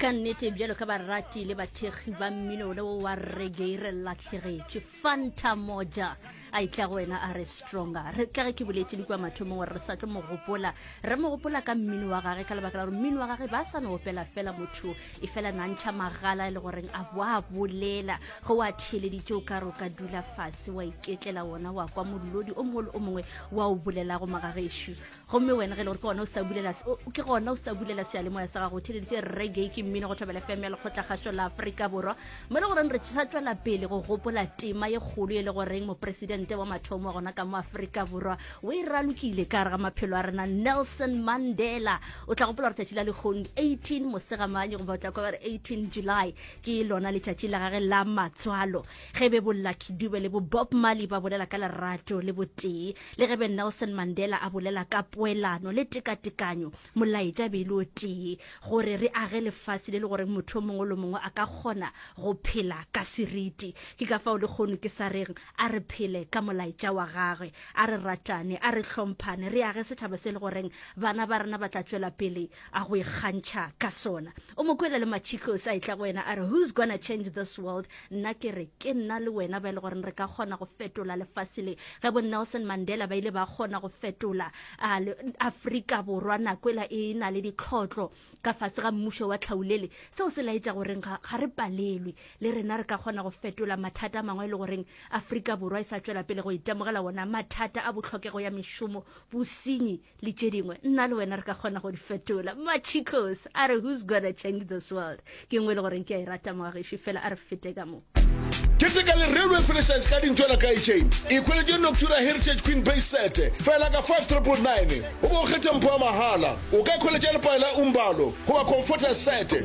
ka nnete bjalo ka barati le bathekgi ba mmino le wa reggae re latlhegetše fanta moja a itla go wena a re stronger re tla ge ke boletse di kwa mathomong gore re sa tlo mo gopola re mo gopola ka mmino wa gage ka lebaka la gore mmino wa gage ba sa no opela fela motho e fela nantšha magala e le goreng a bo a bolela go wa theeleditse o ka re o ka dula fase wa iketlela wona wa kwa molodi o mongwe le o mongwe wa o bolelago magagešo gomme wena ge e le gore ke gona o sa bulela ke gona o sa bulela sealemoya sa gago theleditse reggae ke mmino go thobela fm ya lekgotlakgašo la aforika borwa mo le goreng re sa tswela pele go gopola tema ye kgolo e le goreng mopresidente wa mathomo wa gona ka mo aforika borwa o e ralokile ka gare ga maphelo a rena nelson mandela o tla gopola gore tšatši la lekgong 18 mosegamanye goba o tla kwa ba re 18 july ke lona letšatši la gage la matswalo ge be bollakidube le bo bob marley ba bolela ka lerato le botee Le ge Ben Nelson Mandela a bolela ka poelano le tekatekanyo, molaetša e be e le o tee, gore re age lefase le le goreng motho o mongwe le o mongwe a ka kgona go phela ka seriti. Ke ka fao lekgono ke sa reng a re phele ka molaetša wa gagwe, a re ratane, a re hlomphane, re age setšhaba se le goreng bana ba rena ba tla tšwela pele a go ikgantšha ka sona. O mo kwele le Machikos a etla go yena a re, Who's gonna change this world? Nna ke re, ke nna le wena ba e le goreng re ka kgona go fetola lefase le. Ge bo Nelson Mandela ba ile ba kgona go fetola a, le, Afrika Borwa nako ela e na le ditlhotlo ka fase ga mmušo wa tlhaulele, seo se laetša goreng ga, ga re palelwe. Le rena re ka kgona go fetola mathata a mangwe e le goreng Afrika Borwa e sa tšwela pele go itemogela wona, mathata a bohlokego ya mešomo, bosenyi, le tše dingwe nna le wena re ka kgona go di fetola machicos a re who's gonna change this world ke ngwe le goreng ke a e rata moageši fela a re fete ka moo keteka le railway franchise ka dintšwela ka echain e kgweletše noctura heritage queen bay sete fela ka 599 o bo o kgethe mpho wa mahala o ka kgweletša lepale la umbalo goba comforter sete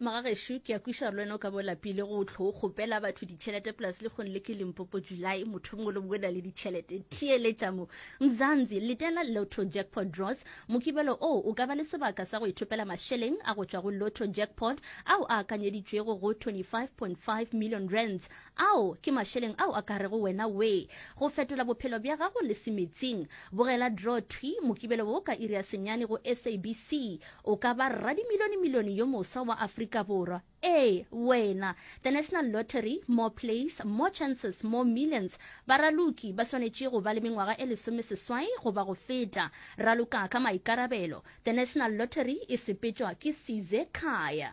Magagešo, ke a kwiša le wena o ka bo lapile go tlo kgopela batho ditšhelete plus le kgone le ke Limpopo July motho mongwe le mongwe na le ditšhelete theeletša mo Mzanzi letela Lotto Jackpot Draws mokibelo o o ka ba le sebaka sa go ithopela mašeleng a go tšwa go Lotto Jackpot ao a akanyeditšwego go 25.5 million rands ao ke mašeleng ao a ka rego wena we go fetola bophelo bja gago le semetsing bogela draw thwi mokibelo wo ka iri ya senyane go SABC O ka ba rradimilionemilione yo moswa wa Afrika Borwa. Ee, wena! The National Lottery, More Plays, More Chances, More Millions. Baraloki ba swanetše go ba le mengwaga e lesomeseswai goba go feta. Raloka ka maikarabelo. The National Lottery e sepetšwa ke Size Khaya.